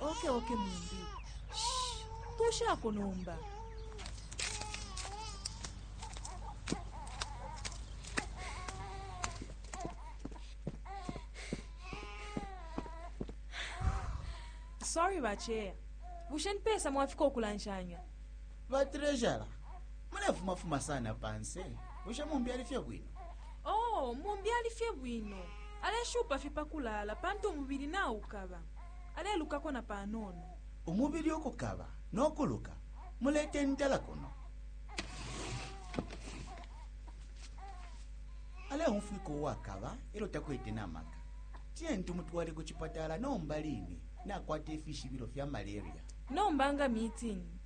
oke oke mumbi tushako nomba sorry bacheya bushe nipesa mwafika okulanshanya batrejara munefumafuma sana panse bushe mumbi ali fye bwino Oo, mumbi ali fye bwino, aleshupa fye pa kulaala pantu umubili naukaba. Alelukako na panono. Umubili ukukaba no kuluka, mulete intela kuno. Aleumfwika uwakaba e lyo takwete na maka. Tiyeni tumutwale ku cipatala nomba line, nakwata ifishibilo fya maleria. Nomba nga mitini.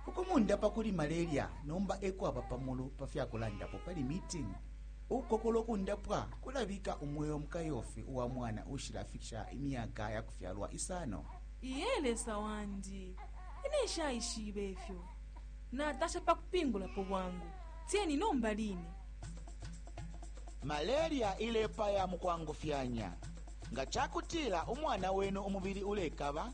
Ukumundapa kuli malaria nomba e kwaba pa mulu pa fya kulandapo pali Meeting. Ukukokola ukundapwa kulabika umweo mu kayofi uwa mwana uushilafikisha imyaka ya kufyalwa isano. Iye, Lesa wandi! Ine nshaishibe ifyo. Natasha pa kupingulapo bwangu. Tieni nomba line. Malaria ilepaya mu kwangufyanya. Nga ca kutila umwana wenu umubili ulekaba,